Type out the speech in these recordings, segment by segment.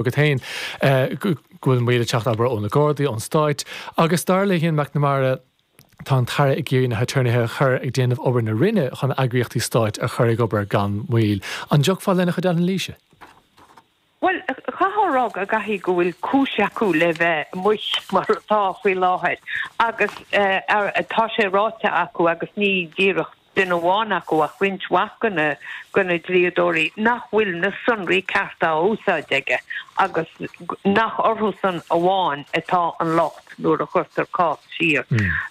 agat féin go bhfuil moill ag teacht obair ó na Gardaí, ón Stáit agus dar le hIan McNamara, tá an tAire ag iarraidh na haturnaetha a chur ag déanamh obair na Roinne chun eagraíochtaí Stáit a chur ag obair gan mhoill. An dtagfá lena chuid anailíse? Bhuel, chaithfeá a rá go gcaithfidh go bhfuil cúis acu le bheith amuigh mar atá faoi láthair agus tá sé ráite acu agus ní díreach, duine amháin acu ach roinnt mhaith de na dlíodóirí nach bhfuil na sonraí cearta á n-úsáid aige agus nach orthusan amháin atá an locht nuair a chuirtear cás siar.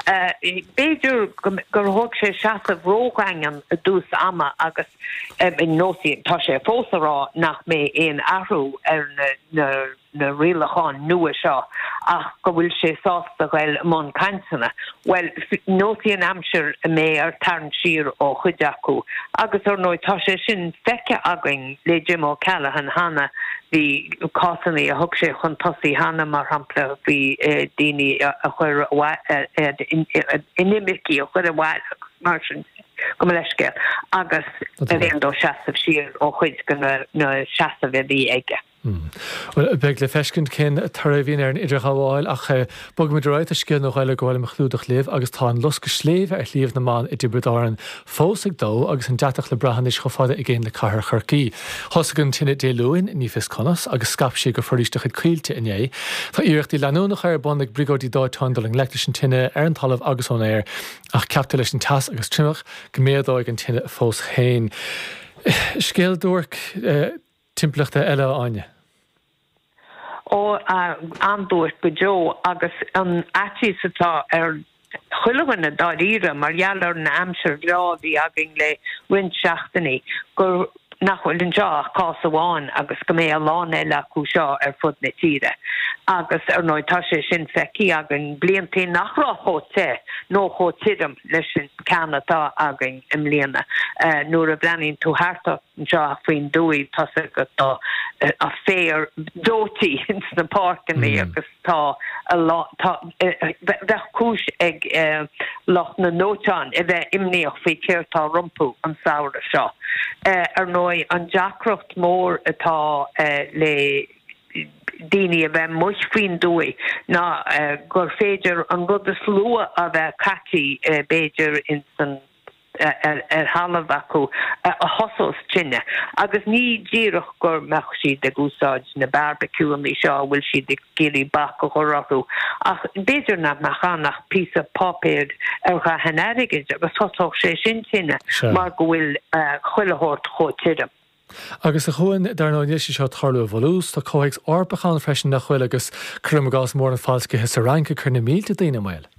B'fhéidir gur thóg sé seasamh ródhaingean i dtús ama agus ar ndóigh tá sé fós a rá nach mbeidh aon athrú ar na. na rialacháin nua seo ach go bhfuil sé sásta a ghoil i mbun cainteanna. Bhuel, neosfaidh an aimsir an mbeidh aon tarraingt siar ó chuid acu agus ar ndóigh tá sé sin feicthe againn le Jim O Callaghan cheana, bhí cásanna a thug sé chun tosaigh cheana, mar shampla faoi daoine a chuir inimircigh a chuir abhaile agus mar sin de, gabh mo leithscéal, agus ab éigean dó seasamh siar ó chuid de na seasaimh a bhí aige. Bhuel, beidh le feiscint cén toradh a bhíonn ar an idirghabháil ach bogfaimid ar aghaidh go dtí scéal náisiúnta eile go bhfuilimid ag clúdach inniu agus tá an loscadh sléibhe ar Shliabh na mBan i dTiobraid Árann fós ag dó agus an deatach le brath anois chomh fada i gcéin le cathair Chorcaí. Thosaigh an tine Dé Luain, ní fios conas, agus scaip sé go foraois de chuid Coillte inné. Tá iarrachtaí leanúnacha ar bun ag briogáidí dóiteáin dul i ngleic leis an tine ar an talamh agus ón aer ach ceaptar leis an teas agus triomach go méadóidh an tine fós féin. Scéal duairc. timpeallachta eile a Áine. Ó, an-duairc go deo agus an faitíos atá ar chuile dhuine dáiríre mar gheall ar an aimsir bhreá a bhí againn le roinnt seachtainí gur, nach bhfuil anseo ach cás amháin agus go mbeidh a lán eile acu seo ar fud na tíre agus ar ndóigh tá sé sin feicthe againn bliantaí nach raibh chomh te nó chomh tirim leis an ceann atá againn i mbliana. Nuair a bhreathnaíonn tú thart ort, amach faoin dtuaith tá a fhios agat tá an féar dóití ins na páirceannaí agus tá ábhar cúis ag lucht na ndóiteán a bheith imníoch faoi céard tá rompu an samhradh seo. Ar ndóigh an deacracht mór atá le daoine a bheith amuigh faoin dtuaith ná gur féidir an rud is lú a bheith caití b'fhéidir ins an ar thalamh acu a thosós tine agus ní díreach go mbeadh siad ag úsáid na beárbaiciúnna seo a bhfuil siad ag iarraidh bac a chur orthu ach b'fhéidir nach mbeadh ann ach píosa páipéir ar dhath an airgid agus thosódh sé sin tine mar go bhfuil chuile shórt chomh tirim. Agus a Chúáin, dar ndóigh níl sé seo ag tarlú i bhfolús, tá comhthéacs Eorpach ann freisin nach bhfuil agus cuirim i gcás mórán falscaithe sa Fhrainc ag cur na mílte daoine i mbaol.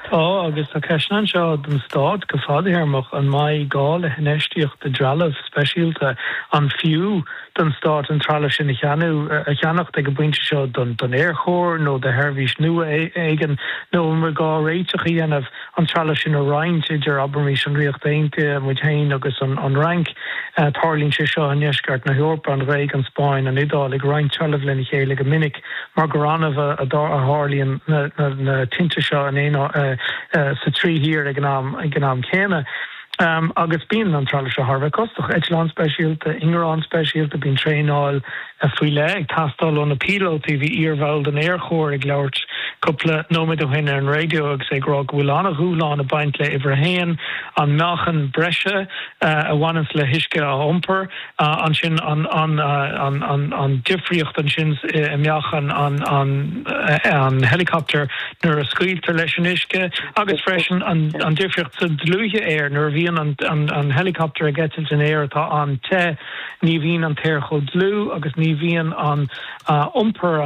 Tá agus tá ceisteanna anseo don Stát go fadthéarmach, an mbeidh gá le hinfheistíocht i dtrealamh speisialta, an fiú don Stát an trealamh sin a cheannú a cheannacht ag an bpointe seo don Aerchór nó do sheirbhís nua éigin, nó an mbeadh gá réiteach a dhéanamh, an trealamh sin a roinnt idir, abraimis, an Ríocht Aontaithe, muid féin agus an Fhrainc. Tarlaíonn sé seo i ndeisceart na hEorpa, an Ghréig, an Spáinn, an Iodáil ag roinnt trealamh lena chéile go minic. mar gur annamh a tharlaíonn na tinte seo sna trí thír ag an am céanna agus bíonn an trealamh seo thar a bheith costach, eitleáin speisialta, ingearáin speisialta, bíonn traenáil faoi leith ag teastáil ó na píolótaí. Bhí iarbhall den aerchór ag labhairt cúpla nóiméad ó shin ar an raidió agus é ag rá go bhfuil an-dhúshlán ag baint le huimhir a haon, an meáchan breise a bhaineanns le huisce a iompar. ansin an difríocht ansin i meáchan an helicopter nuair a scaoiltear leis an uisce agus freisin an difríocht sa dlúithe aeir nuair a bhíonn an helicopter ag eitilt in aer atá an-te ní bhíonn an t-aer chomh dlúth agus ní bhíonn an iompar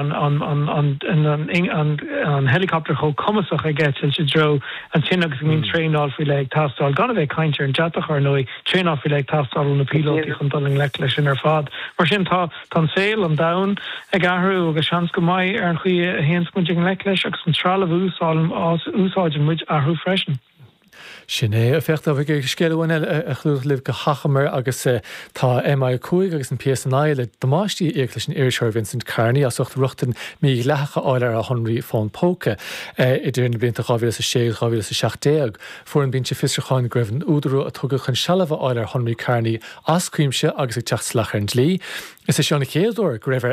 an helicopter chomh cumasach ag eitilt i dtreo an tine agus bhíonn traenáil faoi leith ag teastáil gan a bheith ag caint ar an deatach ar ndóigh. Traenáil faoi leith ag teastáil ó na píolótaí chun dul i ngleic leis sin ar fad? Mar sin, tá an saol, an domhan, ag athrú agus seans go mbeidh ar an chaoi a théanns muid i ngleic leis agus an trealamh a úsáideann muid athrú freisin. Sin é. Féach, tá scéal amháin eile a chlúdach libh go hachomair agus tá MI5 agus an PSNI le damáistí a íoc leis an iriseoir Vincent Kearney as ucht rochtain mhídhleathach a fháil ar a shonraí fón póca idir na blianta 2006 agus 2017. Fuair an Binse Fiosrúcháin go raibh an údarú a tugadh chun sealbh a fháil ar shonraí Kearney as cuimse agus ag teacht salach ar an dlí. Is é seo an chéad uair go raibh ar